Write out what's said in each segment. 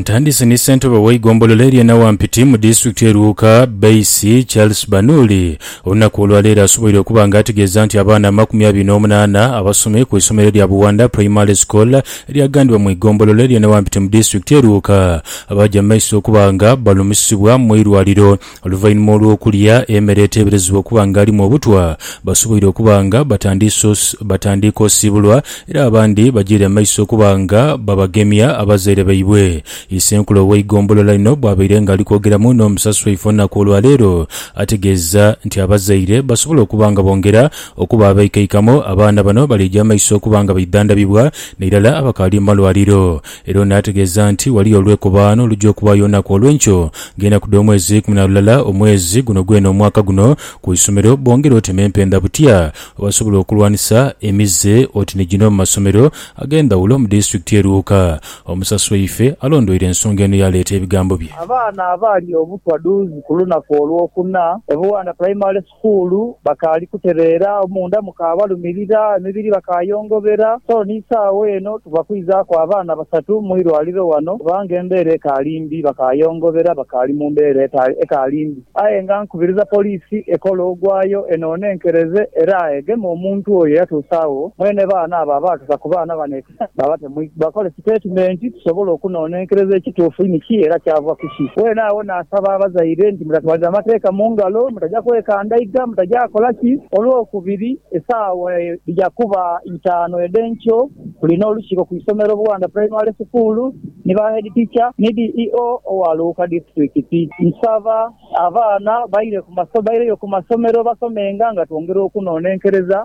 Ntandise ni ssentebe w'eigombolola erye Nawampiti mu disitulikiti ye Luuka, Baisi Charles Banuuli olunaku olwaleero asoboire okuba nga ategeeza nti abaana amakumi abiri n'omunaana abasomye ku isomero erya Buwanda Primary School eryagandibwa mu igombolola erye Nawampiti mu disitulikiti ye Luuka bagya mu maiso okuba nga balumisibwa mu irwaliro Oluvainhuma olw'okulya emere eteeberezebwa okuba nga alimu obutwa, basoboire okuba nga batandiika osiibulwa era abandi bagyeire amaiso okuba nga babagemya abazaire baibwe. Isenkulu ow'eigombolola lino bwabaire nga ali kwogeramu n'omusasi waife olunaku olwaleero, ategeeza nti abazaire basobola okuba nga bongera okuba abeikaikamo, abaana bano baliija amaiso okuba nga baidhandabibwa nairala abakaali mu malwaliro. Era ono ategeeza nti waliyo olwekobaano olujja okubaayo olunaku olwenkyo nga enaku dh'omwezi eikumi na lulala omwezi guno gwene omwaka guno ku isomero bongere oti n'empenda butya bwebasobola okulwanisa emize oti ni gino mu masomero ag'endhawulo mu disitulikiti ye Luuka. Omusasi waife alondweire ensonga eno yaaleeta ebigambo bye. Abaana abaali obutwa dhuuzi ku lunaku olwokuna e Buwanda Primary Sukuulu bakaali kutereera, munda mukaabalumirira, emibiri bakaayongobera. So ni saagho eno tuva kwizaaku abaana basatu mu irwaliro wano kubanga embeera ekaali mbi. Bakaayongobera, bakaali mu mbeera ekaali mbi. Aye nga nkubiriza poliisi ekole ogwayo enoone enkereze era egeme omuntu oyo eyatuusa agho. Mwene baana abo abaatusa ku baana bano. Bwaba temwidha kole sitatimenti, tusobole okunonenkereza ekituufu ni ki era kyava ku ki. Weene agho naasaba abazaire nti mutatwalira amateeka mu ngalo, mutaja kwekandaiga, mutaja kola ki. Olwokubiri, esaawa dhija kuba itaanu edh'enkyo, tulina olukiiko ku isomero Buwanda Primary School ni ba Head Teacher ni DEO owa Luuka Disiturikiti. Nsaba abaana baire ku masomero, baireyo ku masomero basomenga nga twongera okunonenkereza.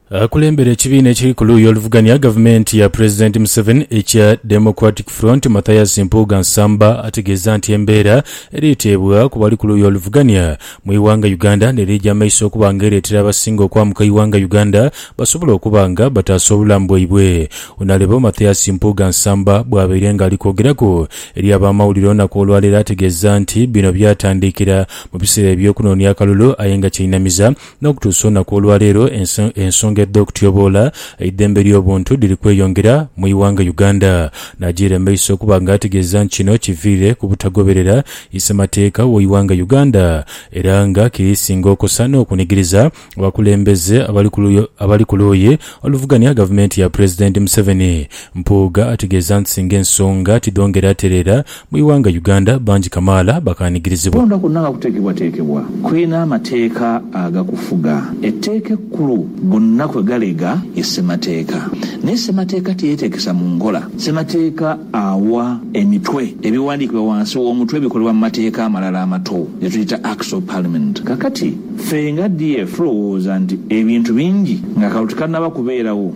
Akulembera ekibiina ekiri ku luuyi oluvugania gavumenti ya Pulezidenti Museveni ekya Democratic Front, Mathias Mpuuga Nsamba ategeeza nti embeera eriiteebwa ku bali ku luuyi oluvugania mu ighanga Uganda n'eriija maiso okuba nga ereetera abasinga okwamuka ighanga Uganda basobole okuba nga bataasa obulamu bwaibwe. Ono alebo Mathias Mpuuga Nsamba bwabaire nga ali kwogeraku eri abamawulire olunaku olwaleero ategeeza nti bino byatandiikira mu biseera eby'okunoonia akalulu aye nga kyeinamiza N'okutuusa olunaku olwa leero, ensonga edh'okutyoboola eidhembe ly'obuntu dhiri kweyongera mu ighanga Uganda, n'ajiira mu maiso okuba nga ategeeza nti kino kiviire ku butagoberera isemateeka w'eighanga Uganda era nga kiri singa okosa n'okunigiriza abakulembeze abali ku luuyi oluvuganya gavumenti ya Pulezidenti Museveni. Mpuuga ategeeza nti singa ensonga tidhongera tereera, Mu ighanga Uganda bangi kamaala bakaanigirizibwa. Okulonda kwonna nga kuteekebwateekebwa kulina amateeka agakufuga. Etteeka ekkulu gonna kwe galega ye Ssemateeka. Naye Ssemateeka teyeeteekesa mu nkola. Ssemateeka awa emitwe ebiwandiikibwa wansi w'omutwe ebikolebwa mu mateeka amalala amato ge tuyita Acts of Parliament. Kaakati, ffe nga DF tulowooza nti ebintu bingi ng'akalulu tikannaba kubeerawo.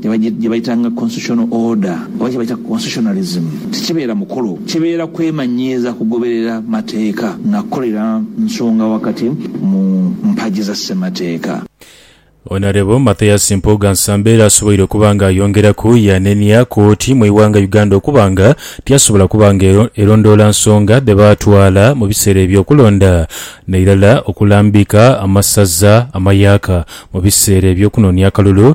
gye baitanga constitutional order oba kye baita constitutionalism, tikibeera mukolo, kibeera kwemanyiiza kugoberera mateeka na kukolera nsonga wakati mu mpagi za Ssemateeka. Honourable Mathias Mpuuga Nsamba era asoboire okuba nga ayongeraku yanenia kkooti mu ighanga Uganda okuba nga tiyasobola kuba nga erondoola nsonga dhe baatwala mu biseera eby'okulonda n'eirala okulambika amasaza amayaaka mu biseera eby'okunonia akalulu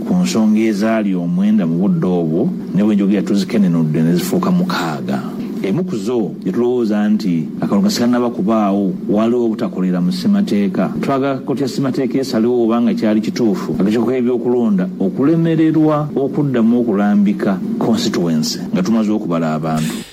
Ku nsonga ezaali omwenda mu budde obwo, ni bwe njogera tuzikenenudde ne zifuuka mukaaga. Emu ku zo ye tulowooza nti akalulu nga sikanaba kubaagho, waaliwo obutakolera mu ssemateeka. Twagala kooti ya ssemateeka esalewo oba nga kyali kituufu akakiiko k'ebyokulonda okulemererwa okuddamu okulambika konsituwense nga tumaze okubala abantu.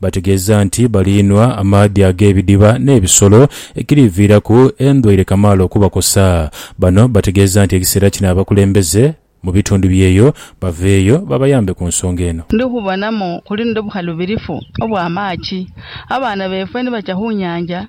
Bategeeza nti baliinhwa amaadhi ag'ebidiba n'ebisolo ekiriviiraku endwaire kamaala okubakosa. Bano bategeeza nti ekiseera kino abakulembeze mu bitundu byeyo baveeyo babayambe ku nsonga eno. Ndi kubonamu kulindho bukhalubirifu obwa maaki. Abaana beefwe ni bacha khu nyaanja,